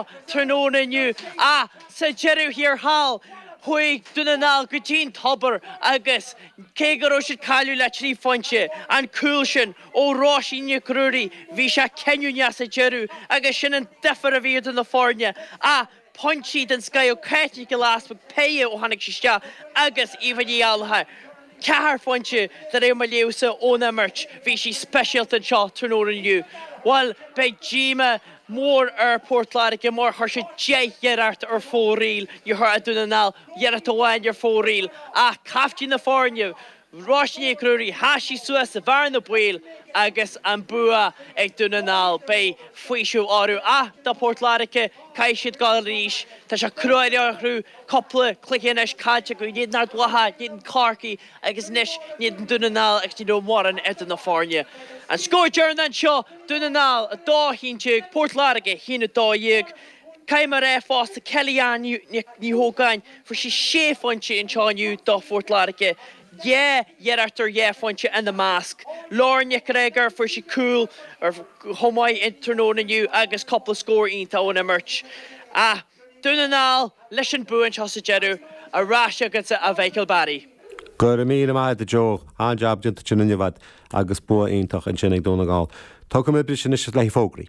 tráthnóna inniu ach sa deireadh thiar thall chuaigh Dún na nGall go dtí an tobar agus cé go raibh siad ag cailleadh le trí phointe an cúl sin ó Róisín Nic Ruairí bhí sé cinniúnach sa deireadh agus sin an difear a bhí idir na foirne ach pointí den scoth ó Cáit Nic Giolla Easpaig, péire ó tháinig sí isteach agus Eva Ní Ghallchóir. Ceithre phointe de réir mo léamhsa ón imirt. Bhí sí speisialta anseo tráthnóna inniu. Bhuel, beidh díoma mór ar Port Láirge mar chuir siad deich n-iarracht ar fóraoil. Níor chuir Dún na nGall iarracht amháin ar fóraoil. Ach caiftín na foirne, Róisín Nic Ruairí, sheas sí suas sa bhearna baoil agus an bua ag Dún na nGall. Beidh faoiseamh orthu ach do Port Láirge, Caithfidh siad goil arís. Tá sé cruaidh orthu. Cupla cluiche anois caillte acu. In éadan Ard Mhacha, in éadan Corcaigh agus anois in éadan Dún na nGall agus ní raibh mórán eadar na foirne. An scór deireanach anseo, Dún na nGall 2, 11, Port Láirge 1, 12. Caithfidh mé a rá fosta Kelly-Ann Ní hÓgáin, fuair sí sé phointe anseo inniu do Phort Láirge. Dhá iarracht ar dhá phointe ina measc. Lauren Nic Gregor, fuair sí cúl chomh maith an tráthnóna inniu agus cúpla scór iontach ón imirt. Ach Dún na nGall leis an bua anseo sa deireadh. Ar ais chugatsa a Mhichael Barry. Go raibh míle maith agat a Joe. An-jab déanta ansin inniu a'd agus bua iontach ansin ag Dún na nGall. Tógfaidh muid briseadh anois le haghaidh fógraí.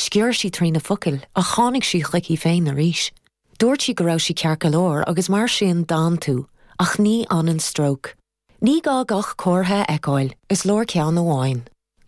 Sciorr sí trí na focail ach tháinig sí chuici féin arís. Dúirt sí go raibh sí ceart go leor agus mar sin d'fhan tú. Ach ní fhanann stróc. Ní gá gach comhartha a fheiceáil, is leor ceann amháin.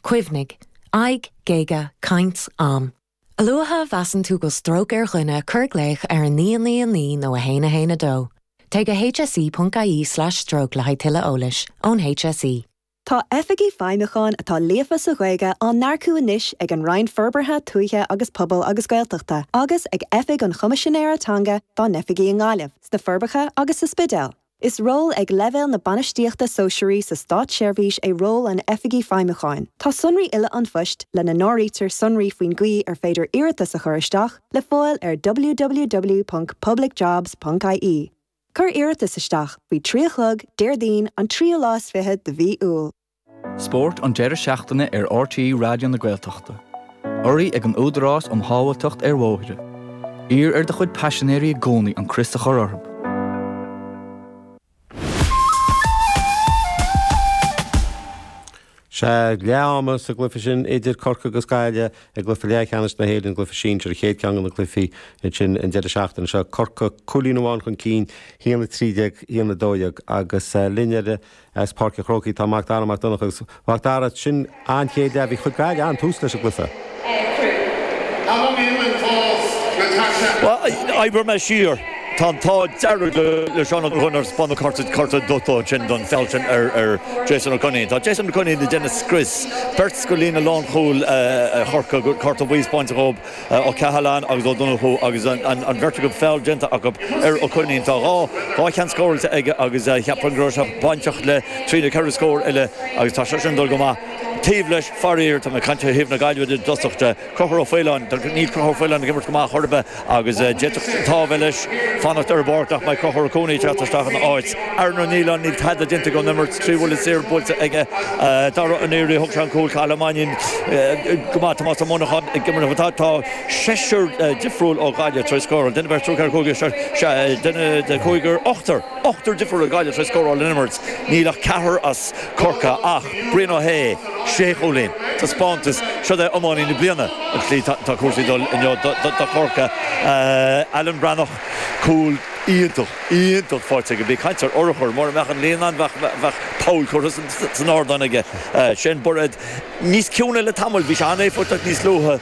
Cuimhnigh. Aghaidh, géaga, caint, am. A luaithe a mheasann tú go bhfuil stróc ar dhuine cuir glaoch ar 999 nó 112. Téigh go hse.ie/stroke le haghaidh tuilleadh eolais ón HSE. Tá Oifigigh Feidhmiúcháin atá líofa sa Ghaeilge á n-earcú anois ag an Roinn Forbartha Tuaithe agus Pobail agus Gaeltachta agus ag Oifig an Choimisinéara Teanga dá n-oifigí i nGaillimh, sna Forbacha agus sa Spidéal. Is ról ag leibhéal na Bainistíochta Sóisearaí sa Státseirbhís é ról an Oifigigh Feidhmiúcháin. Tá sonraí uile an phoist, lena n-áirítear sonraí faoin gcaoi ar féidir iarratas a chur isteach, le fáil ar www.publicjobs.ie. Cuir iarratas isteach faoi trí a chlog Déardaoin an tríú lá is fiche de mhí Iúil. Spórt an deireadh seachtaine ar RTÉ Raidió na Gaeltachta. Urraithe ag an Údarás um Shábháilteacht ar Bhóithre. Iarr ar do chuid paisinéirí i gcónaí an crios a chur orthu. Sé leath ama sa gcluife sin idir Corcaigh agus Gaillimh i gcluife leathcheannais na hÉireann, an cluife sinsir, an chéad ceann de na cluifí sin an deireadh seachtaine seo. Corcaigh cúilín amháin chun cinn, haon a trí déag, haon a dó dhéag agus linn ar as Páirc an Chrócaigh tá Macdara Mac Donncha agus Macdara. Sin an chéad leath. Bhí, chuir Gaillimh an-tús leis an gcluife. Ainm Iúil in Clause Natasha. Oibreoidh mé siar. Tá an t-ádh dearg le Seán Ó Donnchú nár spáineadh cárta, cárta dubh dó ansin don feall sin ar Jason Ó Coinín. Tá Jason Ó Coinín ag déanamh scrios beirt de líne lánchúil Chorcaí, cárta buí spáinte dhóib, Ó Cathaláin agus Ó Donnchú agus an bheirt acu feall déanta acu ar Ó Coinín. Tá dhá cheann scóráilte aige agus cheapfainn go raibh sé bainteach le trí nó ceithre scór eile agus tá sé sin ag dul go maith. Taobh leis, faraor, tá mé ag caint ó thaobh na Gaillimhe de i dtosach de. Conchúr Ó Faoláin. Níl Conchúr Ó Faoláin ag imirt go maith chor ar bith agus d'fhéadfadh an t-ádh a bheith leis fanacht ar an bpáirc nach mbeidh Conchúr Ó Cuanaigh ag teacht isteach ina áit. Aaron Ó Nialláin. Níl tada déanta ón imirt. Trí bhuille saor buailte aige. Dara Ó Naoire, thug sé an cúl. Cathal Ó Mainín go maith. Tomás Ó Monacháin ag imirt. Tá seisear difriúil ó Ghaillimh tar éis scóráil. Duine, beirt, triúr, ceathrar, cúigear, seisear, sea, duine, cúigear, ochtar. Ochtar difriúil ó Ghaillimh tar éis scóráil ón imirt. Níl ach ceathrar as. Corcaigh ach Brian Ó hAodha, Sé Chúilín, Taispeántas, siúd é Iománaí na Bliana, an tslí atá cúrsaí ag dul inniu do Chorcaigh. Alan Breathnach, Cúl iontach, iontach faighte aige. Bí ag caint ar urchar, mura mbeadh an líon ann bheadh poll curtha san ardán aige. Shane Bairéad, níos ciúine le tamall, bhí sé an-éifeachtach níos luaithe.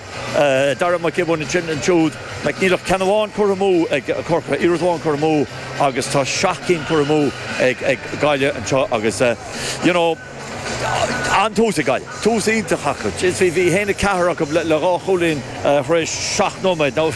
Dara Mac Giobúin ansin ansiúd. Like, níl ach ceann amháin curtha amú ag Corcaigh, iarracht amháin curtha amú agus tá seacht gcinn curtha amú ag Gaillimh anseo agus eh, you know, an-tús ag Gaillimh, tús iontach acu. Jeez, bhí 1-4 acu le dhá chúilín tar éis seacht nóiméad. Now,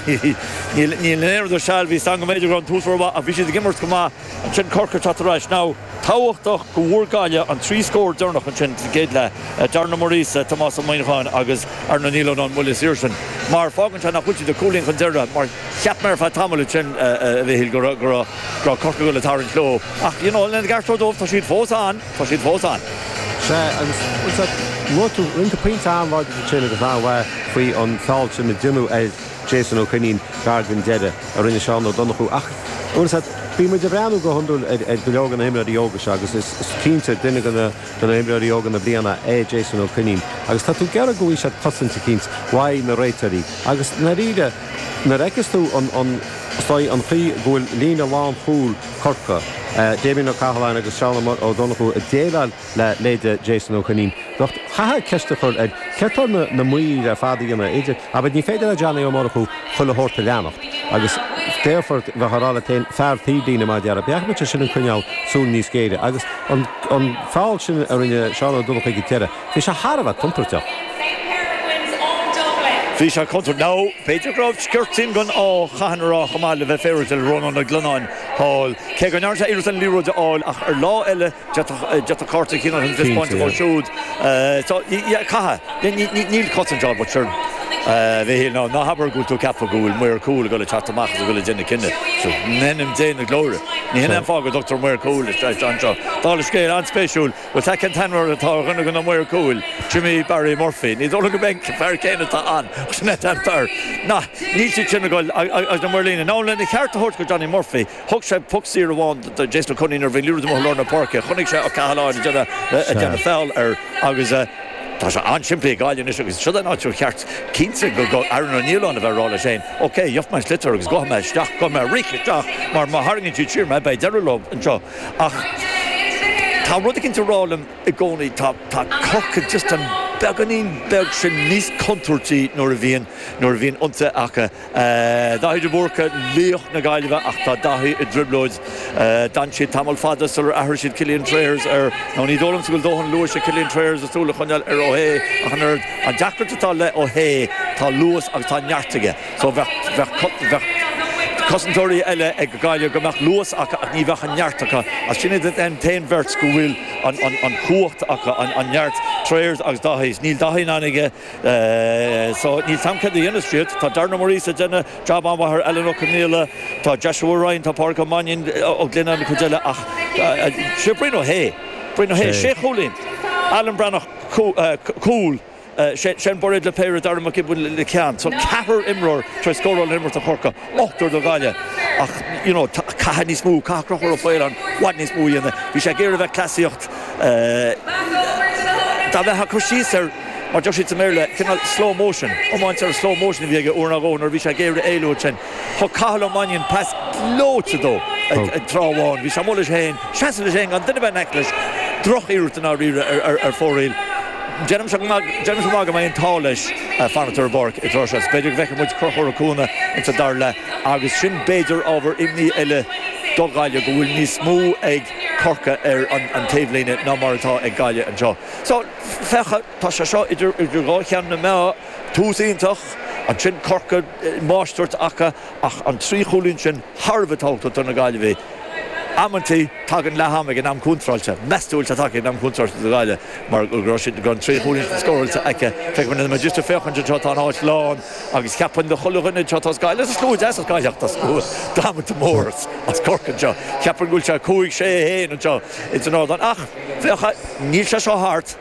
níl aon rud ar seal, bhí stangadh, b'fhéidir go raibh an tús rómhaith ach bhí siad ag imirt go maith. Ansin Corcaigh, teacht ar ais now. tábhachtach go bhfuair Gaillimh an trí scór deireanach ansin sa gcéad leath, Darren Ó Muirgheasa, Tomás Ó Muineacháin agus Aaron Ó Nialláin, an buille saor sin, mar fágann sé nach bhfuil siad ach cúilín chun deireadh mar cheap mé ar feadh tamaill ansin, a Mhichíl, go raibh Corcaigh le tarraingt leo ach, you know, lena gceart dóibh, tá siad fós ann, tá siad fós ann. Sea, agus luaigh tú rinne tú pointe an-láidir ansin agus an-mhaith faoi an feall sin a déanadh ar. Jason Ó Coinín, gar den deireadh, a rinne Seán Ó Donnchú. Ach, bhfuil a fhios agat, bíonn muid ag breathnú go hiondúil ar, ar go leor de na himreoirí óga seo agus is, is cinnte, duine de na, de na himreoirí óga na bliana é Jason Ó Coinín. Agus tá tú ag iarraidh go bhfaighidh sé cosaint eicínt uaidh na réiteoirí. Agus, ndáiríre, nuair a fheiceas tú an, an, stoi, an chaoi go bhfuil líne lánchúil Chorcaí, Damien Ó Cathaláin agus Seán Ó Donnchú ag déileáil le leithéide Jason Ó Coinín. Now caithfear ceist a chur ar céard tá na maoir ar fad a dhéanamh idir, abair ní féidir le Johnny Ó Murchú chuile shórt a leanacht agus déarfá, bheifeá ag rá leat féin, fear taobhlíne mar a déarfá, bheadh seisean in ann coinneáil súil níos géire agus an an feall sin a rinne Seán Ó Donnchú ag an deireadh, bhí sé thar a bheith contúirteach. Bhí sé contúirteach. Now b'fhéidir go raibh sciorta den ádh, caithfear a rá chomh maith le bheith féaráilte le Rónán Ó Glionáin thall, cé go ndearna sé iarracht an liathróid a fháil ach ar lá eile, D'fhéadfadh cárta a chinneadh an díospóireacht dhó siúd. Caithfidh. Níl cosaint ann but sure Mhíchíl ná habair go bhfuil tú ag ceapadh go bhfuil maor cúil ag dul ag teacht amach agus ag dul ag déanamh cinneadh. In ainm Dé na Glóire. Ní shin é an fáth go dtugtar maor cúil isteach anseo. Dála scéil, an-spéisiúil, bhfuil a fhios 'ad cén t-ainm atá ar dhuine go na maoir cúil, Jimmy Barry Murphy. Ní dóigh liom gurb é an fear céanna atá ann ach sin é an fear. Níl siad sin ag dul agus na maoir líne. Ná lena cheart a thabhairt go Johnny Murphy, Thug sé puc saor amháin do Jason Ó Coinín ar bhruinniú amuigh i lár na páirce. Chonaic sé Ó Cathaláin ag déanamh feall air agus tá sé an-tsimplí ag Gaillimh anois agus siod an áit cheart cinnte go gcaithfidh Aaron Ó Nialláin a bheith ag rá leis féin, OK, gheobhaidh mé an sliotar agus gabhfaidh mé isteach, gabhfaidh mé ag rith isteach mar má tharraingíonn siad siar mé, beidh deireadh leo anseo. Ach tá rud éicint ag rá liom i gcónaí, tá Corcaigh just an beagáinín beag sin níos contúirtí nuair a bhíonn ionsaithe acu. Daithí de Búrca, laoch na Gaillimhe ach tá Daithí i dtrioblóid. D'fhan siad tamall fada sular athraigh siad Cillian Trayers air nó ní dóigh liomsa go bhfuil dóthain luais ag Cillian Trayers le súil a choinneáil ar Ó hAodha ach an oiread. An deacracht atá le Ó hAodha tá luas agus tá neart aige so bheadh bheadh cosantóirí eile ag Gaillimh go mbeadh luas acu ach ní bheadh an neart acu ach sin iad an t-aon bheirt go bhfuil an an an chumhacht acu an neart, Trayers agus Daithí. Níl Daithí in ann aige. So níl a fhios 'am céard a dhéanas siad. Tá Darren Ó Muiríosa ag déanamh jab an-mhaith ar Alan Ó Conghaile, tá Joshua Ryan, tá Pádraig Ó Mainín, Ó Glennon, an chuid eile ach sé Brian Ó hAodha, Brian Ó hAodha sé chúilín, Alan Breathnach cúl, Shane Bairéad le péire, Darragh Mac Giobúin le ceann. So ceathrar imreoir tar éis scóráil ón imirt do Chorcaigh. ochtar do Ghaillimh ach you know caithfidh níos mó caithfidh Conchúr Ó Faoláin i bhfad níos mó a dhéanamh. Bhí sé ag iarraidh a bheith ag cleasaíocht eh dá mbeadh cur síos air mar a deir siad sa mBéarla cineál slow motion iomáint ar slow motion a bhí aige uair ná dhó nuair a bhí sé ag iarraidh éalú ansin. Thug Cathal Ó Mainnín pas gleoite dó ag ag tráth amháin. Bhí sé amuigh leis féin ina sheasamh leis féin gan duine ar bith in aice leis. Drochiarracht i ndáiríre ar ar ar fóraoil. Déanaimse amach go mbeidh an t-ádh leis fanacht ar an bpáirc an tráth seo. B'fhéidir go bhfeicfidh muid Conchúr Ó Cuana ins an dara leath agus sin b'fhéidir ábhar imní eile do Ghaillimh go bhfuil níos mó ag Corcaigh ar an taobhlíne ná mar atá ag Gaillimh anseo. So, féach, tá sé seo idir dhá cheann na meá, tús iontach, ansin Corcaigh, máistreacht acu, Ach an trí chúilín sin thar a bheith tábhachtach do na Gaillimhigh. Amantaí tagann leath ama ag an am contráilte. Meas tú an bhfuil sé tagtha ag an am contráilte do Ghaillimh mar go raibh siad go raibh an trí chúilín sin scóráilte acu. Feicfimid anois. Anois ag féachaint anseo tá an áit lán agus cheapfainn do chuile dhuine anseo tá Gaillimh sa slua deas as Gaillimh tá slua damanta mór as Corcaigh anseo. Cheapfainn go bhfuil sé cúig, sé, a haon anseo ins an ardán. Ach féach níl sé seo thart.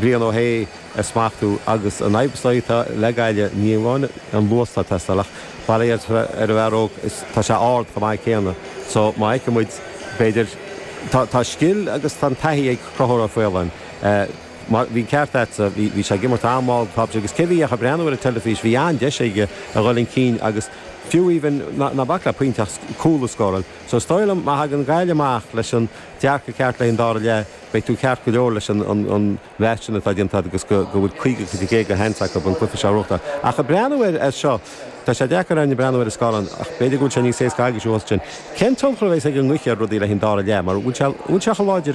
bliain ó shé a smachtú agus an fhadhb so atá le Gaillimh ní amháin an luas atá ag teastáil ach mar a dhéarfá ar an bhfear óg is tá sé ard chomh maith céanna so má fheiceann muid b'fhéidir tá tá scil agus tá an taithí ag Conchúr Ó Faoláin mar bhí an ceart agatsa bhí bhí sé ag imirt an-mhall tá sé agus cé nach bhfuil ach ag breathnú ar an teilifís bhí an-deis aige a dhul chun cinn agus fiú even ná ná bac le pointe ach cúl a scóráil so is dóigh liom má thagann Gaillimh amach leis an dearcadh ceart le haghaidh an dara leath Beidh tú ceart go leor leis an mata sin atá déanta agat agus go bhfuil 50 faoin gcéad de sheans acu an cluiche seo a bhuachtáil. Ach ag breathnú air as seo, tá sé deacair orainn ag breathnú ar an scáileán ach b'fhéidir go bhfuil sé níos éasca agaibhse ansin. Cén tionchar a bheidh ag an ngaoth ar rudaí le haghaidh an dara leath mar bhfuil sé chomh láidir